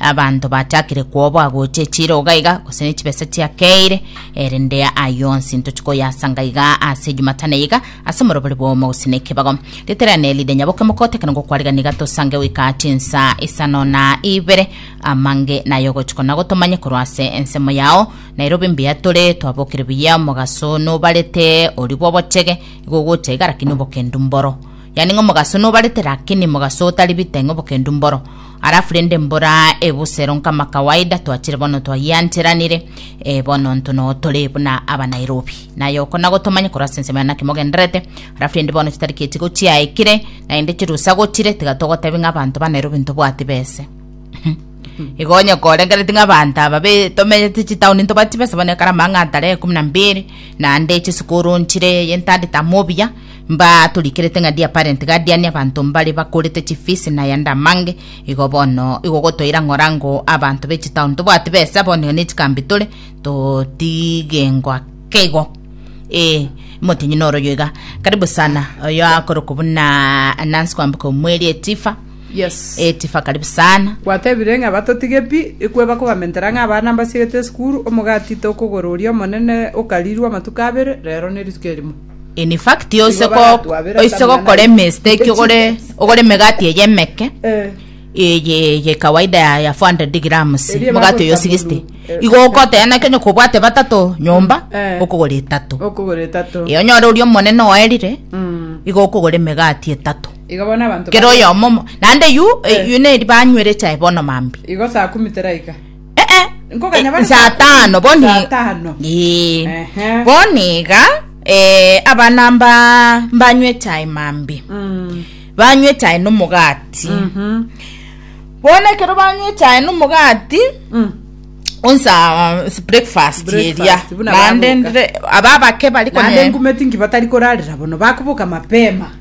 Abanto bachakire kwoboa gocha echiroga iga, gose ne chibesa chiakeire, erende aye onsi ntochi koyasanga iga ase Ejumatane iga, ase omorobori bw'omo gose ne ekebago. Riterane erinde nyaboke mokotekana ngo kwarigani iga tosange goika chinsa isano na ibere, amange naye ogochiko na gotomanye korwa ase ensemo yao. Nairobi mbuya tore, twabokire buya, omogaso nobarete, oria bw'obochege, igo ogocha iga, rakini obokendu mboro. Yani ng'omogaso nobarete, rakini mogaso otari bite, ng'obokendu mboro. Alafu rende mbora ebusero nkama kawaida twachire bono twagiancheranire e, bono ntono tore buna aba Nairobi naye oko nago tomanye korwa ase ensemo ya naki mogenderete alafu rende bono chitariki echigo chiaekire naende chirusa gochire tiga togotebi ng'a abanto ba Nairobi ntobwati bese igo onye korengereti ng'a abanto aba be- tomenyete chitauni ntobati bese bono ekero amang'ata are ekumi na mbiri naende chisukuru nchire yentadete amo obuya Mbatorikerete ng'a diaparent guardian abanto mbare bakorete chifisi na ayande amange, igo bono igogotoira ng'orango abanto be chitown tobwati besa bono iga nechikambi tore totigengo ake igo ee motenyi noro oyo iga karibu sana oyo akorokwa buna Nancy Kwambuka omweri etifa Yes. etifa karibu sana Gwatebire ng'a batotige pi, ekwe bakobamentera ng'a abana mbasiegete esukuru, omogati tokogora oria omonene okarirwe amatuko abere, rero ne rituko erimo. In fact oise Nigo ko baratwabera oise etamia gokora naye. emistake ogore ogore emegati eye emeke Eh. eye eye kawaida ya ya 400 grams Erie mogati bagweta oyo 60 bulu, eh, igo okotena naki onye kobwate batato nyomba Eh. okogora etato okogora etato e onyore oria omonene oerire Mm. igo okogora emegati etato iga bono abanto kero bari- oyomo mo- naende yu Eh. yu neri banywere chae bono mambi igo saa kumi teraika Eh, eh. Nkoganya bare saa saa tano boni saa tano. Ee. Ehe. boni iga eh, abana mba mbanywa echae mambi Mm. banywa echae nomogati Mhm. bono ekero banywa echae nomogati Mm. onsa uh, breakfast Breakfast, eria buna nande babuka. ndire aba abake bari Naende kone ngumeti ngibatari korarera bono bakubuka mapema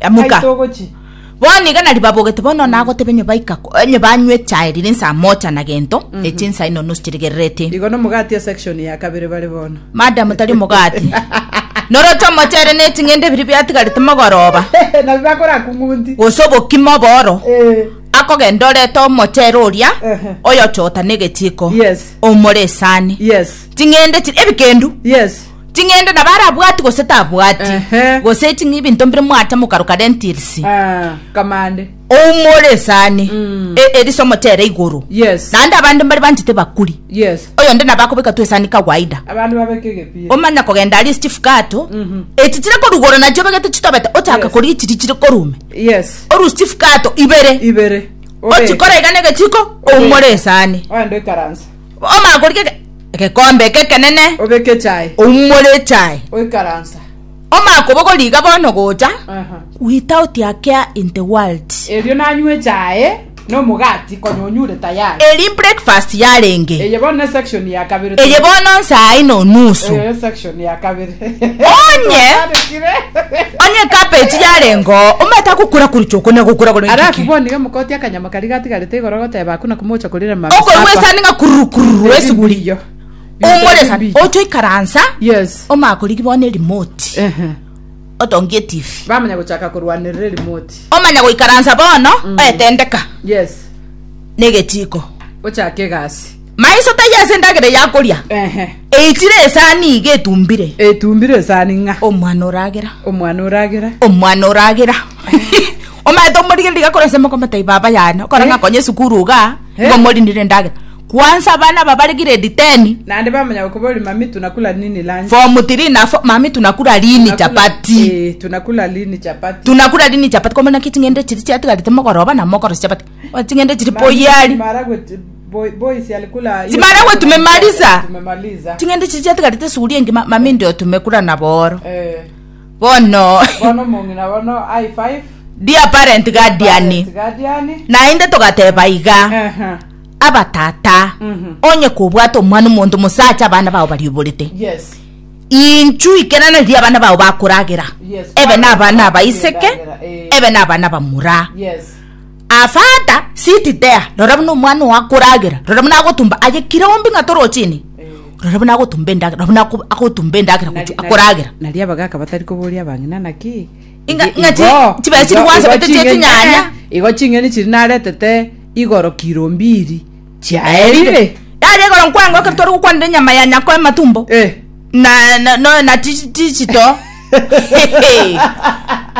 Emuka. Aye togochia. Bono iga nari babogete bono nagotebe onye baika ko- onye banywa echae rire insa mocha na gento echi insa ino nusu chirigerereti Igo nomogati esection ya kabere bare bono. madam tari omogati noroche omochere ne ching'ende biri biatigarete mogoroba Nabi bakora kung'unti. gose obokima oboro Eh. akogenda orete omochere oria Ehe. oyochota na egechiko Yes. omore esani Yes. ching'ende chiri ebikendu Yes. ching'ende nabo arabwati gose tabwati Ehe. gose chingi ebinto mbire mwata mokaruka rentilsi Ah, kamande oumore esani Mm. e- erisomo tere igoro Yes. naende abande mbari banchete bakuri yes oyo nde nabo akobeka tu esani kawaida abandu babeke egepira omanya kogenda ari chief kato Mhm. eti chire korugora nachio obegete chitobete ochaka Yes. kori chiri chire korume yes oru chief kato ibere ibere ochikora igane gechiko oumore esani oende karansa Omakoriki eke- egekombe eke ekenene, Obeke echae. oumore echae, Oikaransa. omakobogori iga bono gocha, Aha. without a care in the world. Erio nanywa echae na omogati konya onyure tayari. Eri breakfast yarenge, Eye bono ne section ya kabere. eye bono nsaa ino nusu, Oyo section ya kabere. Onye. Twatandikire. onye cabbage yarenga oo, omanyete agokura kuri choko nagokura kore Alafu bono iga mokotia akanyama Okariga atigarete igoro goteba aku na komocha korira mambia Okorwa sapa. esani ng'a kururu kururu Ebi esuguri. biyo. Biyo Omore tari esani. biyo. Ocho ikaransa. Yes. Omakorigi bono erimoti. Ehe. Otongi etifi. Bamanya gochaka korwanerera erimoti. Omanya goikaransa bono oetendeka Yes. negetiko. Ochake egasi. Maiso taiyo ase endagera eye akoria, Ehe. eichire esani iga etumbire. Etumbire esani ng'a. Omwana oragera. Omwana oragera. Omwana oragera. Omanyete omorigereria gakora ase amoko amatai baba yane, okora ng'a akonye esukuru igaa, igo omorinire endagera. Kwanza abana aba bare grade ten. Naende bamanya gokobori mami tunakula nini lunch. Form three na four, mami tunakula lini chapati. Eeh, tunakula lini chapati. Tunakula lini chapati, komanya ki ching'ende chiri chiatigarete mogoroba, nabo mokorosia chapati. Wa ching'ende chiri poyiari Mara gweti boy boy si alikula. hiyo Simara siku we tumemaliza. Tumemaliza. ching'ende chiri chiatigarete suguri engima mami ndio tumekura na boro Eh. bono Bono mong'ina bono high five. dear parent guardian Parent guardian. naende togateba iga Aha. abatata Mhm. onye kobwata omwana omonto mosacha abana bao barioborete Yes. inchu ikerana riria abana bao bakoragera Yes. ebe na abana abaiseke Bakoragera, eh. ebe na abana bamura Yes. Afata sit there rora buna omwana oa koragera rora buna agotumba aye kira ombi ng'a toro chini rora buna agotumba endagera rora buna ako- agotumba endagera gochia akoragera nari abagaka batari koboria abang'ina naki Inga- Igo- inga chi- igo- chibesi igo- rigwansa igo gete chia ching'eni- chinyanya. eh, igo ching'eni chiri naretete igoro kiro mbiri chiaerire. Yaria igoro nkwango ekero tware gokwanera enyama ya nyako ematumbo Eh. na na no na ti ti chito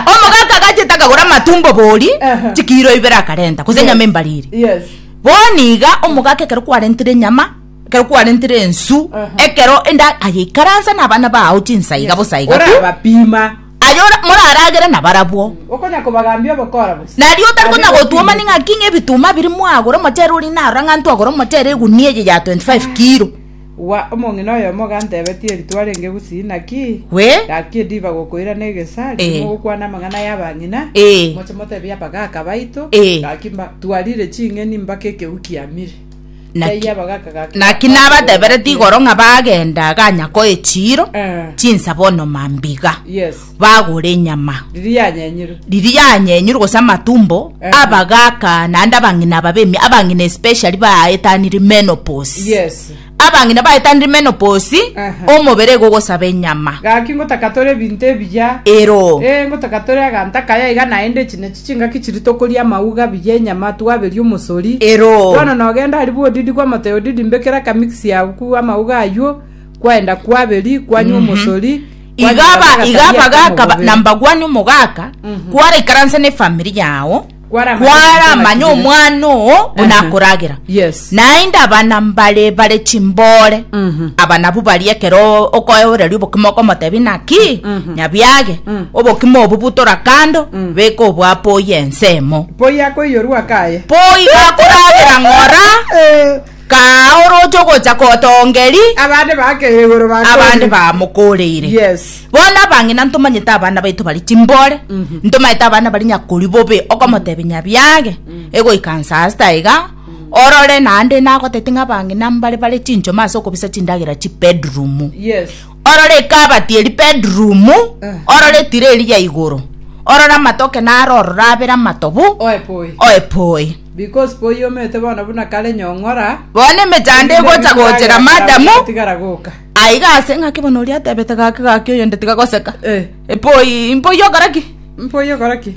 omogaka gachete akagora amatumbo bori Aha. chikiro ibere akarenta gose enyama embariri Yes. boni iga omogaka ekero kwarentire enyama ekero kwarentire ensu Aha. ekero enda ayeikaransa na abana bao chinsa iga bosa iga Ora tu abapima. Aye ora- moraragere nabarabwo. Okonya kobagambia obokora bose. Nario otari Abire konya gotuoma okwigwa. ning'aki ng'a ebituuma biria mwagora omochere oria narora ng'a intwe agora omochere egunia eye ya 25 kilo. Wa omong'ina oyomo gantebetie eritwa renge Gusii, naki We? gaki ediba gokoira na egesa, riria Eh. mogokwana amang'ana y'abang'ina, Eh. moche motebie abagaaka baito, Eh. gaki mba- twarire ching'eni mpaka ekegwi kiamire. Naki- Taiyo abagaka gaka- naki nabatebereti igoro ng'a bagenda aganyako echiiro Eh. chinsabo onoma mbiga yes bagora enyama riri yanyenyirwe riri yanyenyire gose amatumbo Eh. abagaka naende abang'ina ababemi abang'ina especially baetanire menopause yes abang'ina baetanire menopause Aha. omobere igo ogosaba enyama gaki ngotaka tore ebinto ebiya ero Eh, ngotaka tore aganta kaya iga naende chine Chingaki chiria tokoria amauga abuya enyama twaberia omosori. Ero. Bono nogenda aria bwodidi kw'amoteo odidi mbekere akamix yao ku amauga aywo kwaenda kwaberi kwanywa omosori. Iga kwanyora aba- n'agasabia iga abaga akamo akaba bobere. namba gwani omogaka kwaraikaransa n'efamiri yao Kwaramanya kwara amanya omwana oo buna akoragera Yes. Naende abana mbare bare chimboore, aba nabwo baria ekero okoeoreria obokima okomotebia naki, Nyabiage, obokima obo butora kando, beka obo apoye ensemo. Poi akoiyorwa akaye. Poi gakoragera ng'ora, kaa oroche ogocha kotongeri, Abande bakeire igoro bakore. abande bamokoreire. Yes. Bono abang'ina ntomanyete abana baito bari chimboore, ntomanyete abana bari nyakori bobe, okomotebia Nyabiage, egoika nsaa sita iga, Orore naende nagotebete ng'a abang'ina mbare bare chinchoma ase okobisa chindagera chibedroom. Yes. Orore ekabati eri bedroom, orore etira eri ya igoro, orore amatoke naro ororo abere amatobu, Oe poi. oe poi. Because poi omete bono buna kare nyong'ora. Bono emechando egocha gochera madamu, Tigara goka. aiga ase ng'aki bono oria atebete gaki gaki oyonde tiga goseka. Eh. Epoi, mpoi ogora ki? Mpoi ogora ki?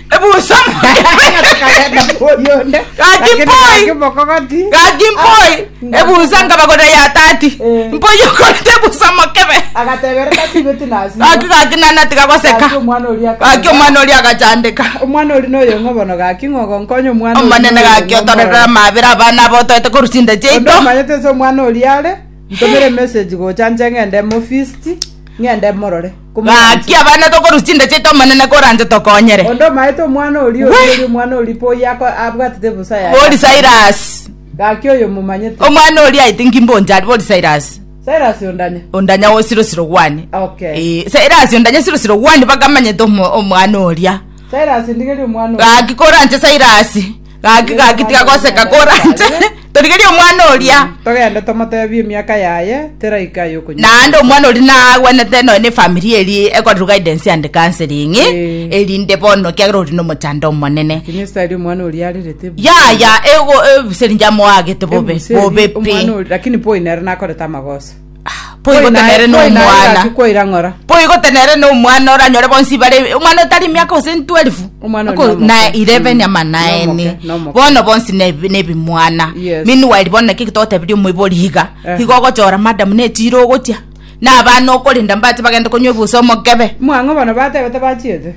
ebusa Gaki mpoi. gaki mpoi ebusa nkabagorera ya tati Eh. mpoi okorete ebusa mokebe gaki gaki nana tigagoseka gaki omwana oria agachandeka omwana ori noyo ng'obono gaki ng'ogonkonye omwana oria omonene noyo gaki ng'omorore. otorerera amabere abana abo otoete korusinda Onde chiaito omanyete ase omwana oria are ntomere message gocha nche ng'ende mofisi ng'ende morore Gaki abana tokorwa chinda chiaito Omonene koranche tokonyere. Onde omaete omwana oria Wee. oria oria omwana oria po oyo ako- abwatete ebusa yaye. Bori Cyrus. Gaki oyo momanyete. Omwana oria aite nkimbonche ari bori Cyrus. Cyrus ondanya. Ondanya o siro siro gwani. Okay. Eh, Cyrus ondanya siro siro gwani bakamanyete omo- omwana oria. Cyrus ndigeria omwana oyo. Gaki koranche Cyrus. gaki gaki tiga goseka koranche torigerie omwana oria togende tomotebie emiaka yaye teraika yokunywa naende omwana ori nagwenete noe ne familia eri ekorerwa guidance and counseling Eh. erinde bono kiagera ori nomochando omonene lakini style omwana oria arerete bu- yaya ego ebiseri njamoagete bobe Ebuseri, bobe pi omwana ori- lakini boy nere nakorete amagoso Boigo tenere nomwana. Koirang'ora. Boigo tenere nomwana oranyore bonsi bare omwana otari miaka ose 12. Omwana Ako- onomoke. na 11 Mm. ama naene. Nomoke, nomoke. Bono bonsi ne- nebimwana. Yes. Meanwhile bono naki togotebirie omoibori iga. Eh. Igo ogochora madam netiro ogotia. Na abana okorenda mbati bagende konywa ebusa omokebe. Mwang'o bono batebete bachiete.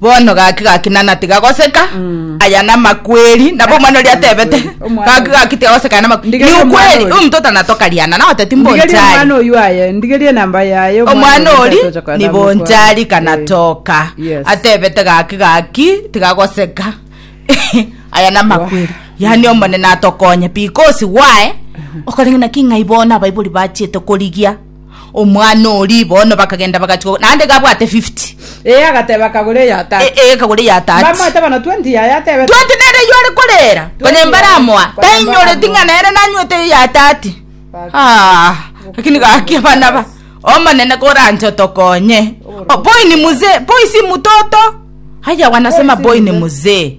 Bono gaki gaki nana tigagoseka aya namakweri nabo omwana oria atebete Amakweri, omwana gaki oyo. gaki tigagoseka aya namakweri Ndigeria ni omwana ukweri oyo. omonto otanatokariana na oteti ndigerie omwana mbonchari oyu aye ndigerie enamba yaye omwana oyo ori ntasocha kwa- ni namukwa. bonchari Eh, kanatoka yes. atebete gaki gaki tigagoseka aya namakweri yani omonene atokonye because why okoreng'ana ki ng'ai bono abaibori bachiete korigia Omwana oria bono bakagenda bagachika, naende iga abwate 50. Ee, agateba, Kagore eya E- tati. e, kagore ya tati Mbamoete bono 20 yaya atebe. twati nere yo ore korera Twati konya mbaramoa yaya, konya tainyoreti mbaramoa. ng'a nere nanywete eyo ya tati Baki. Ah, lakini gaki abana ba omonene koranche otokonye O, boy ni mzee boy si mtoto haya wanasema Boy si boy ni mzee. mzee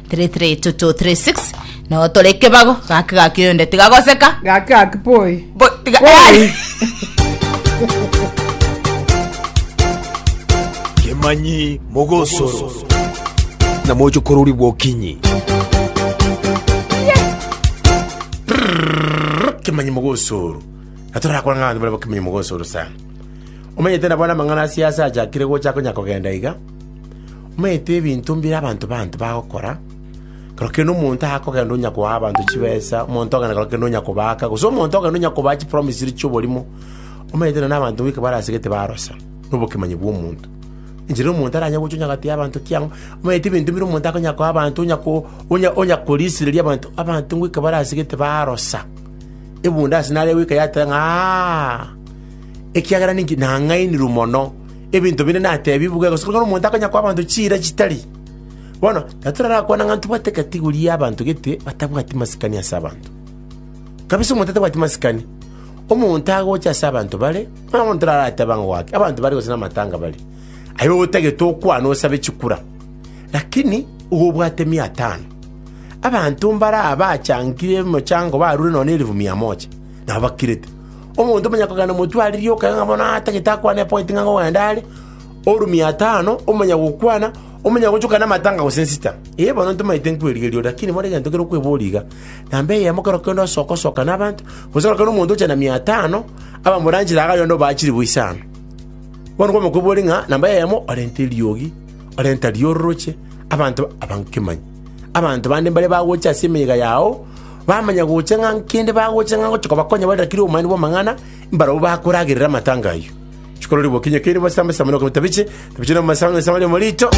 332236 no tore kebago gaki gaki oyonde tigagoseka gaki gaki poi Bo- tiga- Poi. kemanyi mogosoro na mochokorori bwokinyi kemanyi mogosoro natorakora ng'ana baria bakemanyi mogosoro sana omenyete nabona amang'ana asiasa achakire gocha konya kogenda iga Omanyete ebinto mbire abanto baanto bagokora, korokire nomonto akogenda onya koa abanto chibesa, omonto ogende korokire nonya kobaaka, gose omonto ogende onya kobaa chipromise ri chi'oborimo. Omanyete nonye na abanto boika barasegete barosa nobokemanyi bw'omonto. Inche nomonto aranye gocha onya gati y'abanto ki ang'o, omanyete ebinto bire omonto akonya koa abanto onya ko onya onya korisireria abanto, abanto ngoika barasegete barosa, ebunde ase nare goika yateba ng'a ekiagera ninki nang'ainirwe mono. Ebinto binde natebigwe, gose korende omonto akanya koa abanto chiira chitari. Bono, natoraraakwane ng'a ntobwate eketigori y'abanto gete batabwati masikani ase abanto. Kabisa omonto atabwati masikani, omonto agocha ase abanto bare, buna bono torarateba ng'a goake abanto bare gose namatanga bare, aye otagete okwane osabe chikura. Lakini igo obwate mia tano. Abanto mbare aba bachangire emochango barure nonya na elifu mia moja, nabo bakirete. Omonto omonyakogenda omotwe aririe okegega ng'a bono atagete akwane epoeti ng'a nkogenda are, oru mia atano, omonyagokwana, omonyagochoka namatanga gose nsita. Ee, bono ntomaete nkwerigeria ore, lakini more egento kere okweboria iga, namba eyemo kero kende osokosoka nabanto, gose kero kende omonto oche na mia atano, abamoranchire iga aria onde obaa chilifu isano. Bono kwama kweboria ng'a namba eyemo orente eriogi, orenta riororoche, abanto abange kemanyi. Abanto bande mbare bagocha ase emeyega yao. Bamanya gocha ng'a nkende bagocha ng'a ngocha kobakonya bare rakire obomanene bw'amang'ana, mbarabwo bakoragerera amatanga ayio. Chikororigwa okinye keire bosame same nokoba tabiche, tabiche nokoba same same ria morito.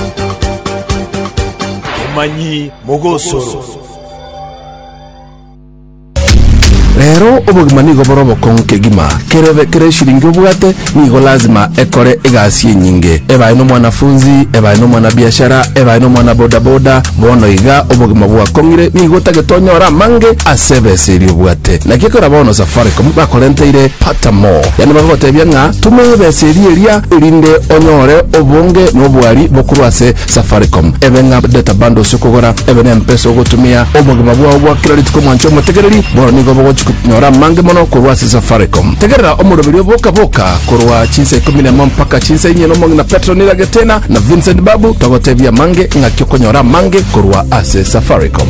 Omanyi mogosoro. Rero obogima nigo bore obokong'u kegima, kerebe kere eshiringi obwate, Nigo lasima ekore egasi enyinge, ebae nomwanafunzi, ebae nomwanabiashara, ebae nomwanabodaboda. Bono iga obogima bwakong'ire, nigo otagetonyora amange ase ebesa eria obwate. Naki ekero bono Safaricom bakorenteire Pata More, yaani bagogotebia ng'a tuma ebesa eria eria, erinde onyore obonge na obwari bokorwa ase Safaricom. Ebe ng'a data bundles okogora ebe nempesa ogotumia. Obogima bwao bwa kera rituko mwancha omotegereri, bono nigo bogochi konyora amange mono korwa ase Safaricom. Tegerera omoroberi o Boka Boka korwa chinsa ikomi nemo mpaka chinsa inye nomong'ina Petro Nira Getena na Vincent Babu togotebia amange ng'aki okonyora amange korwa ase Safaricom.